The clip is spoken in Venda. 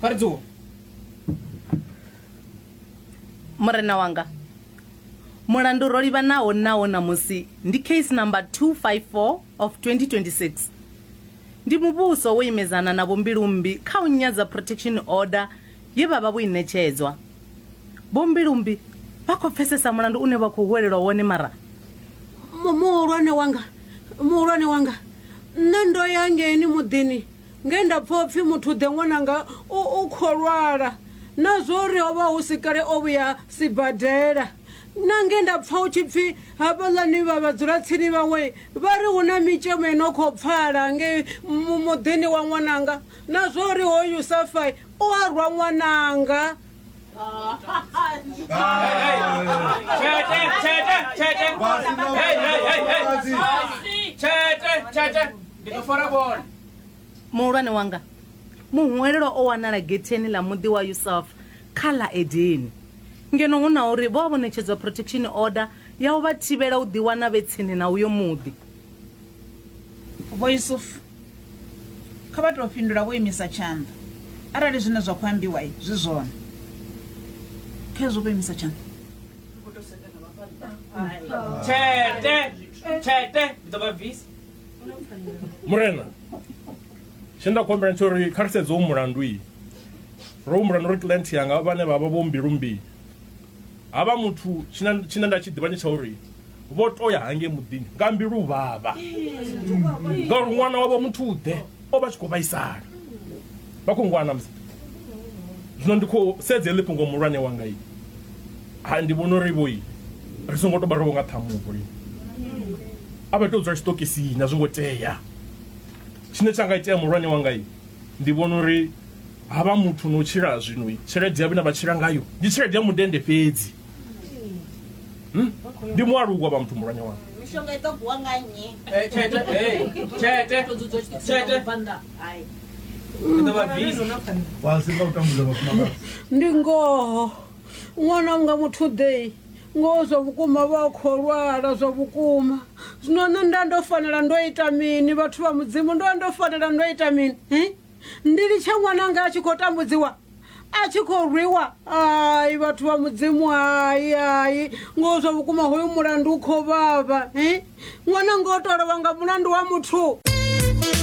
kha ri dzuwe murena wanga mulandu ro livhanaho nawo ṋamusi ndi case number 254 of 2026 ndi muvhuso wo imedzana na vhombilumbi kha u nyadza protection order ye vha vha vho i ṋetshedzwa vhombilumbi vha khou pfesesa mulandu une vha khou huwelelwa wone mara Mu- muhulwane wanga muhulwane wanga nṋe ndo ya ngeni muḓini Nge nda pfa u pfi, Muthu-ḓe, ṅwananga u u khou lwala, na zwa uri ho vha hu si kale o vhuya sibadela, na nge nda pfa hu tshi pfi havhaḽani vha vhadzulatsini vhawe vha ri hu na mitshemo i no khou pfala ngei muḓini wa ṅwananga, na zwa uri hoyu Safai u a rwa ṅwananga. muhulwane wanga muhwelelo o wanala getheni ḽa muḓi wa yusuf kha ḽa edeni ngeno hu na uri vho vha vho ṋetshedzwa protection order ya u vha thivhela u ḓiwana vhe tsini na uyo muḓi vho yusufu Kha vha tou fhindula vho imisa tshanḓa arali zwine zwa khou ambiwa zwi zwone. Khezwo vho imisa tshanḓa. Tshete, tshete, ndi ḓo vha bvisa. Murena, tshine nda khou humbela ndi uri kha ri sedze u mulandu iyi. Ro humbula na uri client yanga vhane vha vha vho mbilu mbii. Ha vha muthu tshina tshina nda tshi ḓivha ndi tsha uri vho to ya hangei muḓini nga mbilu vhavha ngauri ṅwana wavho muthu u ḓe o vha tshi khou vhaisala vha khou ngwana musi zwino ndi khou sedza heḽi fhungo muhulwane wanga i ha ndi vhona uri vhoi ri songo to vha ro nga ṱhamuvo i a vha tou dzula tshiṱokisini a zwi ngo tea tshine tsha nga itea muhulwane wanga i ndi vhona uri ha vha muthu no tshila zwino tshelede ya vhone vha tshila ngayo ndi tshelede ya mudende fhedzi Hmm? ndi mualuwa vha muthu mulwanya wanga mishonga i ḓo gwa nga nnyi Eh, tshete eh, tshete to dzudzwa tshithu Tshete. tsha banda hai i ḓo vha bisi wasi nga u tambudza vhafumakadzi ndi ngoho ṅwana unga muthu ḓei ngoho zwa vhukuma vha a khou lwala zwa vhukuma zwino nṋe nda ndo fanela ndo ita mini vhathu vha mudzimu ndo ndo fanela ndo ita mini hi ndi litshe ṅwananga a tshi khou tambudziwa a tshi khou rwiwa ai vhathu vha mudzimu hai hai ngoho zwa vhukuma hoyu mulandu u khou vhavha ṅwananga o tolovha nga mulandu wa muthu